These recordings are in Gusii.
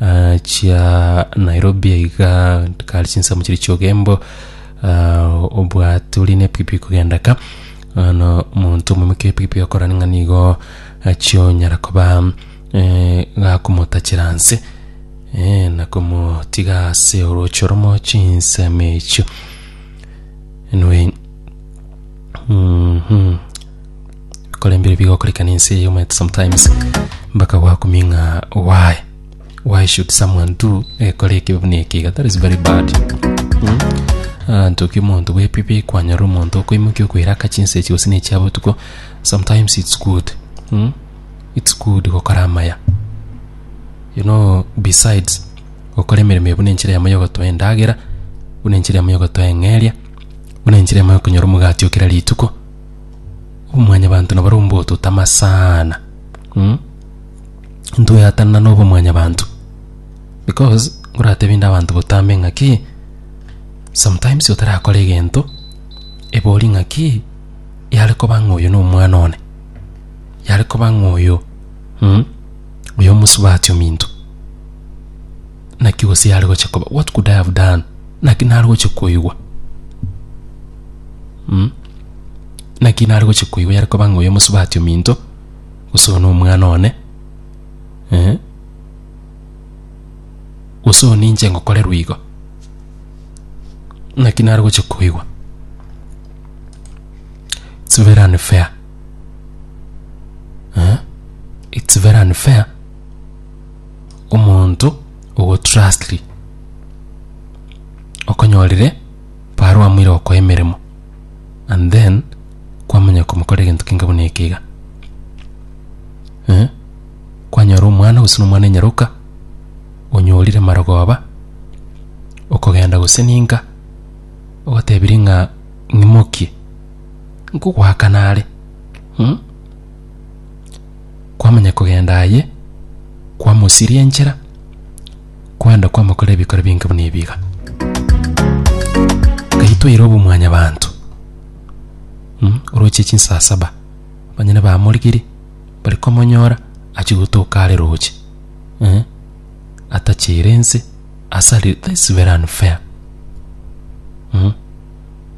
Ah, chia nairobi aiga kari chinsemo chiri chiogembo ah, obwate ori nepikipiki kogenda ka ano omonto omomike epikipiki akorani ng'a nigo achionyara koba eh, gakomotachera nse eh, na komotiga ase orochi oromo chinsemo echio anyway mhm korembire bigo koreka ninse you might sometimes mpaka gwakuming'a why why should someone do ekore ekibe buna ekiga that is very bad mm? anto ki omonto bwepipi kwanyora omonto okoimokia okoira aka chinse echi gose nechi abotuko sometimes it's good mm? it's good gokora amaya you know besides gokora emeremo eye buna enchera yamo yogotoa endagera buna enchera yamo yogotoa eng'eria buna enchera yamo yokonyora omogati okera rituko Omwanyabanto nabare ombototama sana mm? ntoyatanana na obomwanyabanto because ngoratebi nde abanto botambe ng'aki sometimes otarakora egento ebori ng'aki yare koba ng'a oyo na omwana one yare koba ng'a oyo mm? oyo omosubati ominto Naki gose yare gochia koba what could I have done? Naki nare gochia koigwa mm? Naki nare gochia koigwa yare koba ng'a oyo mosubati ominto gose one omwana one eh? gose one inche ngokorerwa igo naki nare gochia koigwa it's very unfair eh? it's very unfair omonto ogotrustri okonyorire barua amoire gokoa emeremo and then kwamanya komokorera egento kenge buna eke iga eh? kwanyora omwana gose na omwana enyaroka onyorire marogoba okogenda gose ninka ogotebirie ng'a ng'imokie nkogoakana are hmm? kwamanya kogenda aye, kwamosiria enchera, kwenda kwamokora ebikora binge buna ebi iga. Ngai toire obomwanyabanto mm, oroche chinsaa saba banyene bamorigirie bari komonyora achi gotoka are roche eh? atachere ense asari this is very unfair mm?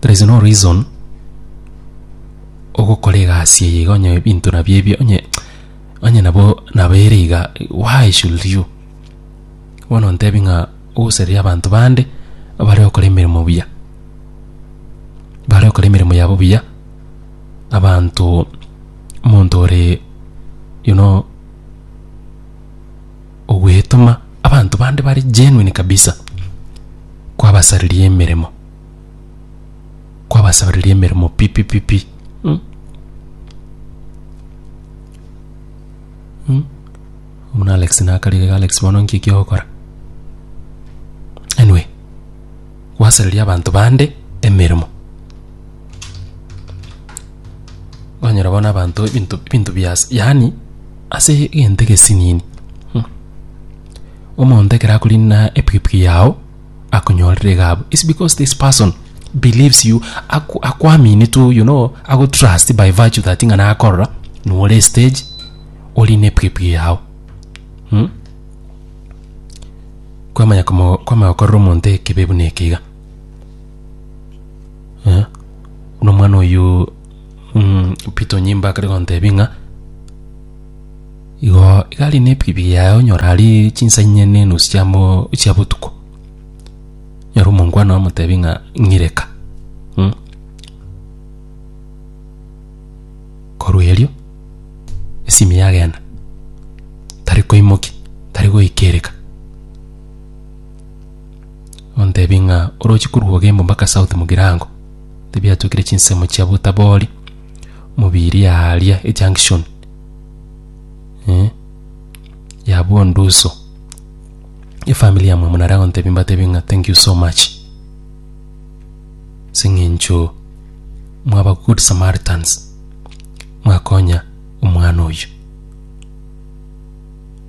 There is no reason ogokora egasi eye iga onye ebinto nabio ebio onye onye nabo nabo ere iga why should you? Bono ontebia ng'a ogoseria abanto bande abare gokora emeremo buya, bare gokora emeremo yabo buya, abanto omonto ore you know. ogwetoma abanto bande bare genuine kabisa, kwabasariria emeremo, kwabasariria emeremo pi pi pi pi mm. Mm. Omuna Alex nakarire Alex bono nki kiogokora anyway gwasariria abanto bande emeremo Kwanyora bono abanto ebinto ebinto bias yaani ase egento egesinini hmm. Omonto ekero akorina epikipiki yao akonyorire gabu is because this person believes you aku, akwamini tu you know ago trust by virtue that ng'a nakorora nore stage orine epikipiki yao hmm? kwamanya kwamanya gokorera omonto ekibe buna ekiga Eh? Buna omwana oyo mm, Pito Nyimba akare gontebia ng'a igo igari ne epikipiki yaye onyora ari chinsa inye ne enusu chia mo- chia botuko nyora omongwana omotebi ng'a ng'ireka mm? korwa erio esimi yagenda tari koimoki tari goikereka Ontebie ng'a oroche korwa Ogembo mpaka South Mugirango, tibiatokire chinsemo chia botabori mobiiri aaria ejunction eh, ya bonduso. Efamiri yamwe amo nare agontebia mbatebie ng'a thank you so much ase eng'encho mwaba good Samaritans, mwakonya omwana oyio.